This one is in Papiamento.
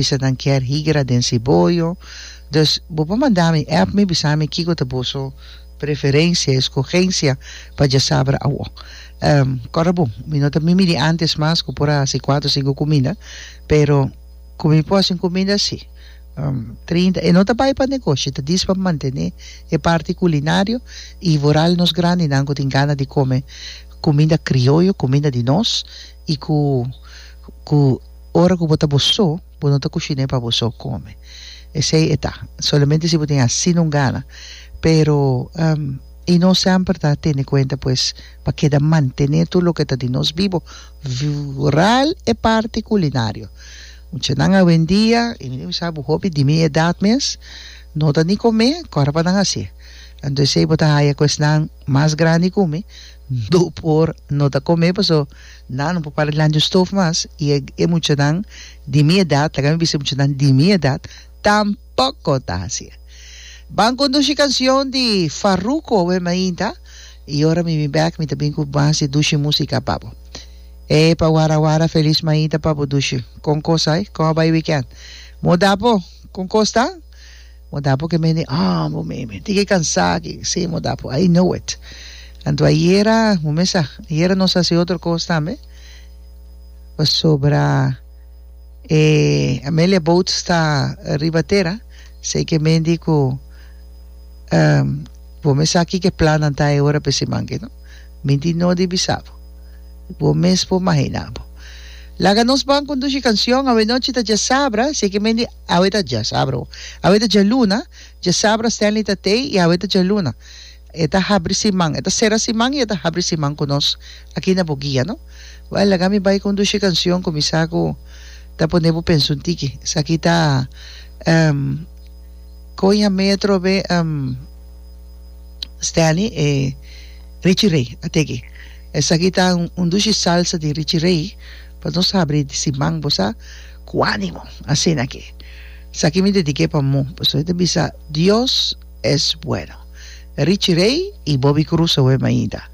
Bisanan kier higra den siboyo. Dus bo por manda mi app mi bisa mi kiko ta boso preferencia, escogencia, pa dja sabra awo. Ehm kòrda bon, mi no ta mimi di antes mas ku por a hasi kuater sinku kuminda, pero ku mi por hasi un kuminda si. Ehm trinta e no ta bai pa negoshi, ta diis pa mantené e parti kulinario i vooral nos grandinan ku tin gana di kome kuminda krioyo, kuminda di nos i ku ku. Ora ku bo ta bo so, bo no ta kushiné pa bo so kome. Esei e ta. Solamente si bo tin hasi un gana. Pero, i nos semper ta tene kuenta pues pa keda mantené tur loke ta di nos bibo, vooral e parti kulinario. Muchanan awendia, i mi tin sa bo hopi di mi edat mes, no ta ni kome kòrda pa nan hasié. Anto esei bo ta haya ku esnan mas grandi ku mi no por no ta kome paso. Nan no por para di lancha stof mas y e muchanan di mi edad, laga mi bisa e muchanan di mi edad, tampoco ta haci e. Ban conduci cancion di Farruko awe mainta y ora mi bin bek mi ta bin cu mas di dushi musica pa bo. Epa wara wara feliz mainta pa bo dushi. Con cos ai? Con a bay weekend? Mo da bo? Con cos ta? Bo da bo ke mende ah bo me menti ke kansa aki si mo da bo I know it anto ayera bo me sa ayera nos hasi otro kos tambe pasobra e Amelia boat sta riba tera sei ke menti ku bo me sa kiko e plannan ta e ora p'esei manke no menti no di bisa bo bo mes por mahina bo laga nos ban kondushi kanshon awe nochi ta djasabra sei ke menti. Awe ta dja sabra o awe ta dja luna? Dja sabra Stanley ta tei i awe ta dja luna. E ta habri si man, e ta sera si man i e ta habri si man ku nos aki na bo guia, no? Wèl, laga mi bai ku un dushi kanshon ku mi sa ku ta pone bo pensa un tiki. Esaki ta, ehm, Kon Yam'é Atrobe, ehm, Stanley, e Richie Ray a tege. Esaki ta un dushi salsa di Richie Ray. Pa nos abri di si man bo sa cu animo asina ke esaki mi dedique pa mu pasobra e ta bisa Dios es bueno Richie Rey y Bobby Cruz awe mainta.